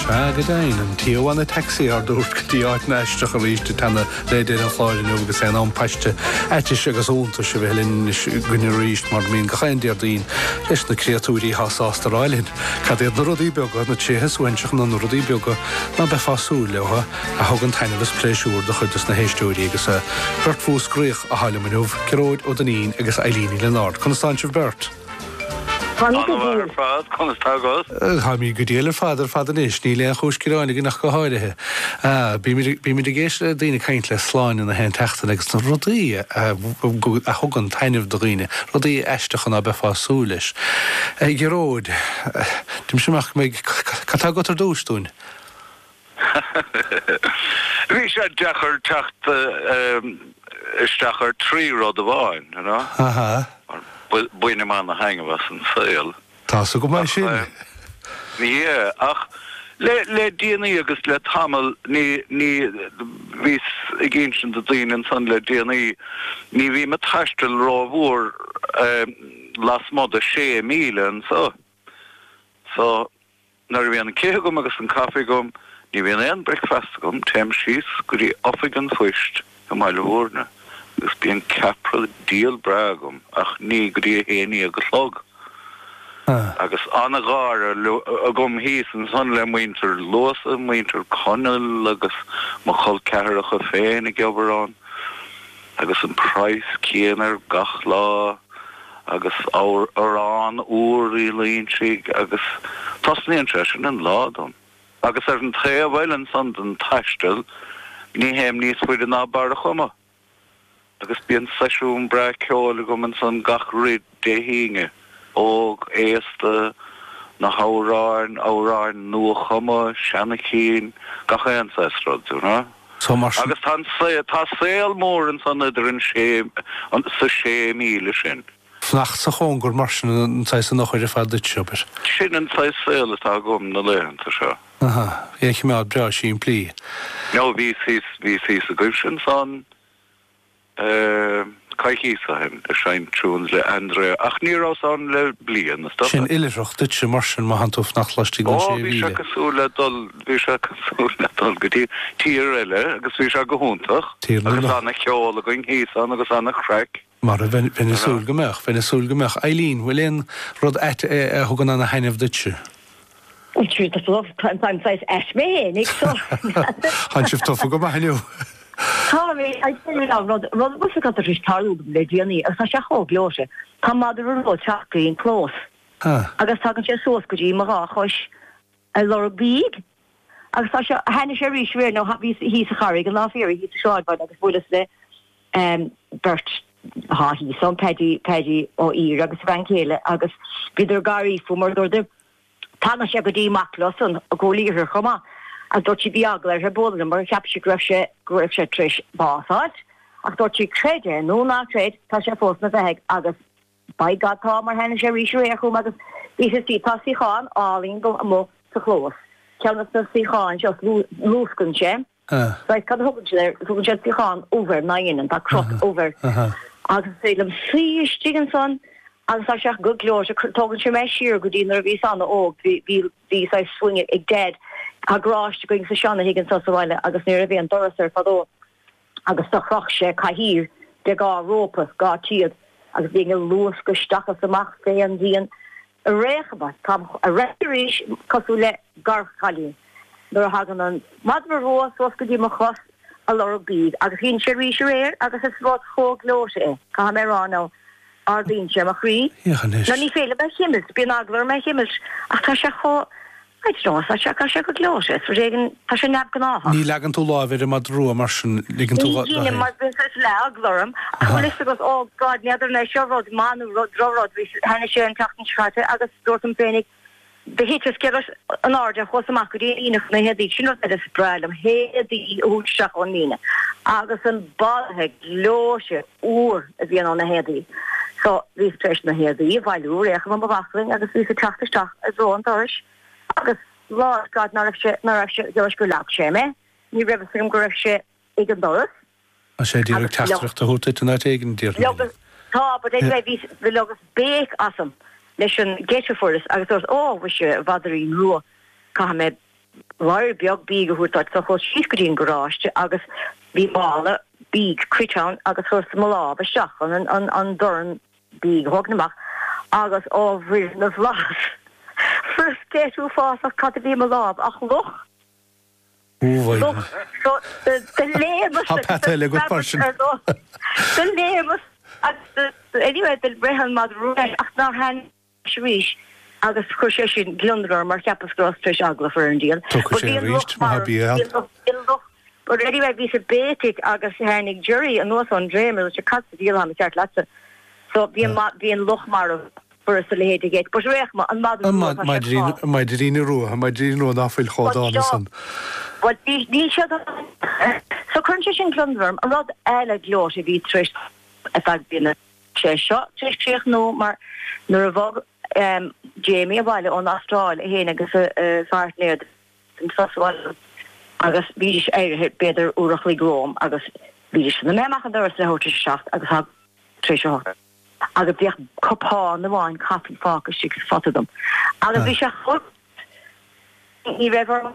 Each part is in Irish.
Sea, go deimhin, an tiománaí taxi ár dtabhairt go dtí áit na n-aisteach arís ag teannadh le deireadh an chláir inniu agus é in am paiste aitis agus iontais a bheith linn anois againn arís, mar a mbíonn gach aon Déardaoin, leis na créatúirí atá sásta a rá linn cad iad na rudaí beaga, na tréithe suaithinseacha nó na rudaí beaga ná beifeá súil leo a thugann taitneamh is pléisiúr do chuid dos na héisteoirí agus beirt Mhúscraíoch athá liom inniu, Gearóid Ó Duinnín agus Eilín Ní Lionáird. Conas tá sibh beirt? An-mhaith ar fad, conas tá agat? Táimid go diail ar fad ar fad anois, níl aon chúis gearáin againn ach go háirithe. Bímid ag éisteacht le daoine ag caint le Sláine gach aon tseachtain agus na rudaí a thugann taitneamh do dhaoine, rudaí aisteacha ná beifeá ag súil leis. Gearóid, deinimse amach go mbeidh, cad tá agat ar dtúis dúinn? Bhí sé deacair teacht isteach ar trí rud amháin, you know. Bainim ana-thaitneamh as an saol. Tá's agam é sin. Yeah, ach le déanaí agus le tamall, ní, ní, bhíos ag insint do dhaoine ansan le déanaí, ní bhím ag taisteal ró-mhór lasmuigh de sé mhíle anseo. So. Nuair a bhíonn an cith agam agus an caife agam, ní bhíonn aon bricfeast agam, téim síos go dtí oifig an phoist i mBaile Mhúirne agus bíonn ceapaire diail breá agam ach ní go dtí a haon déag a chlog agus an-gháire agam thíos ansan le muintir Luasa, muintir Conaill agus mo chol ceathracha féin ag obair ann. Agus an praghas céanna ar gach lá, agus arán úr Uí Loingsigh, agus tosnaíonn sé sin an lá dom. Agus ar an taobh eile ansan den taisteal, ní théim níos faide ná Barr a' Chuma, agus bíonn seisiún breá ceoil agam ansan gach re Dé hAoine, óg, aosta, na hamhráin, amhráin nua-chumtha, seana-chinn, gach aon saghas rud, you know. So mar sin. Agus tá an saol, tá saol mór ansan idir an sé, sa sé míle sin. Fanacht sa chóngar, mar sin, an saghas an eochair ar fad duitse, abair. Sin an saghas saol atá agam na laethanta seo. Aha, é a chimeád breá simplí. No, bhíos thíos, bhíos thíos agaibhse ansan. coicíos ó shin, ag seinnt tunes le Andrea, ach ní rabhas ann le bliain, is dócha. Sin oilithreacht duitse mar sin, má thánn tú ag fanacht laistigh den sé mhíle. Ó, bhí sé cosúil le dul, bhí sé cosúil le dul go dtí tír eile agus bhí sé go hiontach. Tír na Agus ana cheol againn thíos ann agus ana chraic. Mar a bheinn, bheinn ag súil go mbeadh, bheinn ag súil go mbeadh. Eilín, bhfuil aon rud ait a thugann ana thaitneamh duitse? Bhuel, sure, tá love, táim, táim saghas ait mé fhéin, ag seo! Tánn sibh tofa go maith inniu! Tá mé, I'll tell you now, rud, rud bhfuil fhios agat arís, tharla dom le déanaí, agus tá sé chomh gleoite, tá madra rua ag teacht go dtí an clós, agus tagann sé suas go dtí mo dhá chois, ar lorg bídh, agus tá sé, tháinig sé arís aréir, now tha, bhíos thíos sa Charraig, an lá fé dheireadh, thíos sa sráidbhaile, agus bhuaileas le ehm beirt, tha, thíos ann, Paddy, Paddy Ó h-Ír agus a bhean chéile, agus bhíodar ag gáirí fúm, mar dúirt, Tháinig sé go dtí mo chlós-sa i gCúil Aodha chomh maith agus dúirt sí bhí eagla uirthi bualadh liom mar cheap sí go raibh sé go raibh sé tar éis bás fháilt ach dúirt sí creid é nó ná creid tá sé fós ina bheathaidh agus by God tá mar tháinig sé arís aréir chugam agus bhí sé istigh tá suíochán álainn agam amuigh sa chlós ceann de na suíocháin seo luascann sé. Ah. Right, cad a thugann siad air? Tugann siad suíochán ubh air, ná deineann, tá crot ubh air. Ah, ah. Agus is féidir liom suí istigh ansan agus tá sé go gleoite, tógann sé mé siar go dtí nuair a bhíos an-óg, bhí, bhí, bhí saghas swing ag Dad, tá garáiste againn sa seana thig ansan sa bhaile agus nuair a bhí an doras air fadó agus do chroch sé cathaoir de dhá rópa, dhá théad agus bhínn ag luascadh isteach is amach fé an díon. Ar aon chuma. Tá an chruit arís cosúil le gearrchaile nuair a thagann an madra rua suas go dtí mo chos ag lorg bídh agus tháinig sé arís aréir agus is rud chomh gleoite é, caithfidh mé a rá, now ardaíonn sé mo chroí. Féach anois. Now ní féidir liom é a chimilt, bíonn eagla orm é a chimilt ach tá sé chomh. Tá sé ró-fhada as seo, tá sé go gleoite, is rud éigin, tá sé neamhgnáthach. Ní leagann tú láimh ar an madra rua mar sin, ligeann tú Ní dhéanaim, mar bíonn saghas eagla orm, ach bhfuil 'fhios agat, oh God, n'fheadar an é seo rud maith nó rud, droch rud, bhí, tháinig sé an tseachtain seo chaite agus dúirt an Féiníc, do thit an sciorradh in airde agus chuas amach go dtí an líne chun na héadaí, sin rud eile is breá liom, na héadaí a thabhairt isteach ón líne, agus an balaithe gleoite. úr a bhíonn ó na héadaí so bhíos tar éis na héadaí a bhailiú ar aon chuma i mo bhaclainn agus bhíos ag teacht isteach i dtreo an dorais agus bhfuil fhios agat ná raibh sé, ná raibh sé, dóbair gur leag sé mé, ní raibh fhios agam go raibh sé ag an doras. Tá sé ag iarraidh agus leag. teachtaireacht a thabhairt duit in áit éigin, a deir Liam. Leagas, tá, but anyway bhí, leogas béic asam leis an ngeit a fuaireas agus dúirt, ó, mhuise, a mhadairín rua, caithfidh mé Blúire beag bídh a thabhairt duit so chuas síos go dtí an garáiste agus bhí mála bídh cruite ann agus chuireas mo lámh isteach chun an dorn bídh a thógaint amach agus ó a mhuire na bhflaitheas, fuaireas geit uafásach cad a bhí i mo lámh ach luch! Luch! So, do léimeas agus do screadas ar luch. Do léimeas agus anyway do rith an madra leis ach nár tháin. leis arís agus chuir sé sin gliondar orm mar cheapas go rabhas tar éis eagla a chur ar an diabhal. Tiocfaidh sé arís, má tha bia ann. But anyway, bhíos ag béicigh agus tháinig Gerry anuas ón dréim agus sé, cad sa diabhal atá mícheart leatsa? So bhí an bhí an luch marbh furast a leithéid ag but fhéach ma, an madra rua, tá sé fá. An maidrín rua, an maidrín rua ná fuil chomh dána san. But níl níl sé go So cuireann sé sin gliondar orm, an rud eile gleoite a bhí tar éis ar feadh bliana. Is é seo tar éis críochnú mar nuair a bhog Jamie abhaile ón Astráil, é féin agus a phairtnéir den tsos abhaile agus bhídís éirithe b'fhéidir uair a chloig romham agus bhídís san imithe amach an doras leathuair tar éis a seacht agus tháinig tar éis a hocht agus bhíodh cupán amháin caife fágtha istigh sa phota dom agus bhí sé chomh ní raibh orm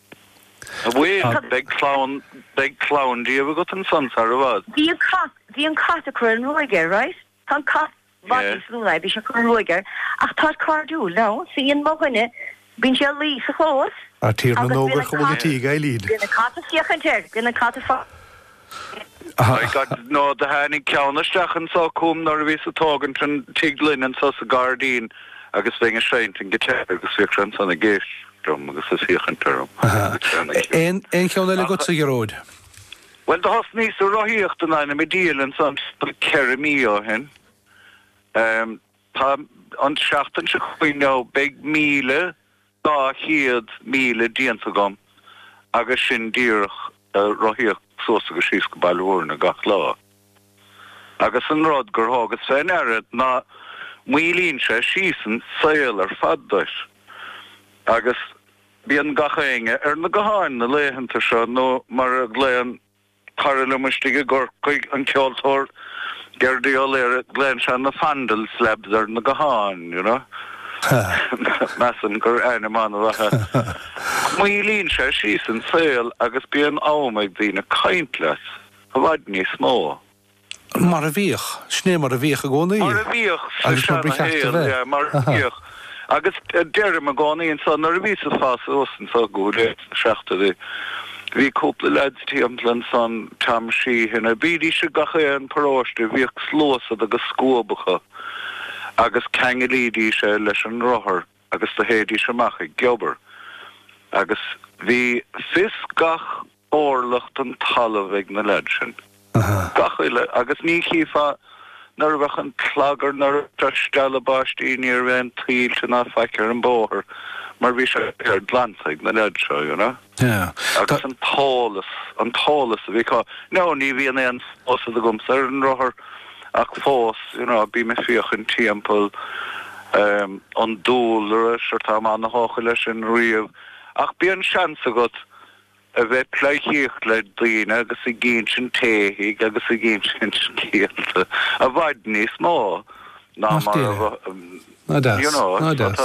A bhuel, beidh clann, beidh clann díobh agat ansan sar i bhfad. Bhí an cat, bhí an cat ag cur an ruaig air, right? Tá an cat i bhfad níos lú ná é, bhí sé ag cur an ruaig air ach táid cairdiúil now. So dhein mo dhuine, bíonn sé ag luí sa chlós agus bíonn an cat, bíonn an cat ag féachaint air, bíonn an cat ag. My God now do tháinig ceann isteach anso chugam nuair a bhíos a' tógaint an tigh linn anso sa gairdín agus bhínn ag seinnt an giotár agus bhíodh sé ansan ag éisteacht liom agus ag féachaint orm. Aon aon cheann eile agatsa a Ghearóid? Bhuel do thosnaíos ag rothaíocht in ainm a' diail ansan timpeall ceithre mí ó shin. Tá an seachtain seo chugainn now beidh míle Dhá chéad míle déanta agam agus sin díreach rothaíocht suas agus síos go Baile Mhúirne gach lá. Agus an rud gur thógas fé ndeara ná maolaíonn sé síos an saol ar fad duit. Agus bíonn gach éinne ar na gutháin na laethanta seo nó mar a ghlaonn cara liom istigh i gCorcaigh, an ceoltóir Gerdie O'Leary, glaonn sé na fondle slabs ar na gutháin, you know. Measaim gur ainm an-mhaith é. Maolaíonn sé síos an saol agus bíonn am ag daoine caint leat i bhfad níos mó. Mar a bhíodh. Sin é mar a bhíodh i gcónaí. Mar a bhíodh sa seanashaol, yeah, mar a bhíodh. Agus deirim i gcónaí anseo, nuair a bhíos ag fás suas anso, go háirithe sna seachtóidí, bhí cúpla leaids timpeall ansan, Tom Sheehy now, bhídís i gach aon paróiste, bhíodh sluasaid agus scuabacha agus cheanglaídís é leis an rothar. agus do théidís amach ag obair agus bhí fios gach orlach den talamh ag na leaids sin. Gach uile, agus ní chífeá nuair a bheadh an clagar nuair a bhí sé ag stealladh baistí ní raibh aon tuilte ná faic ar an bóthar mar bhí sé ar glanta ag na leaids seo, you know. Agus an t-eolas, an t-eolas a bhí acu, nó ní bhíonn aon phósadh agamsa ar an rothar ach fós, you know, bím ag féachaint timpeall an dúlra, sure tá mé an-tógtha leis sin riamh, ach bíonn seans agat a bheith ag pléidhcíocht le daoine agus ag insint éithigh agus ag insint scéalta i bhfad níos mó ná mar a An-deas. An-deas.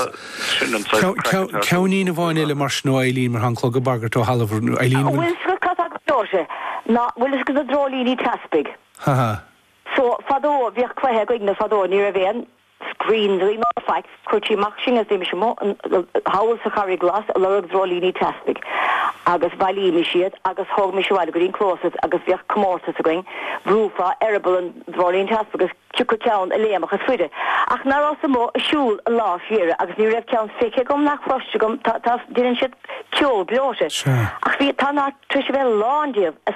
Ceannín amháin eile mar sin ó Eileen, mar tá an clog ag bagairt ó thalamh. Eileen, bhfuil. Bhuel, scuit cos agus deoise. Ná bhfuil fhios agat na dreoilíní teaspaigh? Ha ha. So, fadó, bhíodh cluiche againne fadó, ní raibh aon screens againn ná faics, chuirtí amach sinn is bhímis amuigh an, thall sa Charraig Ghlas a' lorg dreoilíní teaspaigh agus bhailímis iad agus thógaimis abhaile go dtí an clós iad agus bhíodh comórtas againn, bhrúfá eireaball an dreoilín teaspaigh agus. Cé acu ceann a léimfeadh is faide, ach ná rabhas amuigh ag siúl an lá fé dheireadh agus ní raibh ceann feicthe agam ná cloiste agam, tá, tá, déanann siad ceol gleoite, ach bhí, tá, an áit tar éis a bheith lán díobh.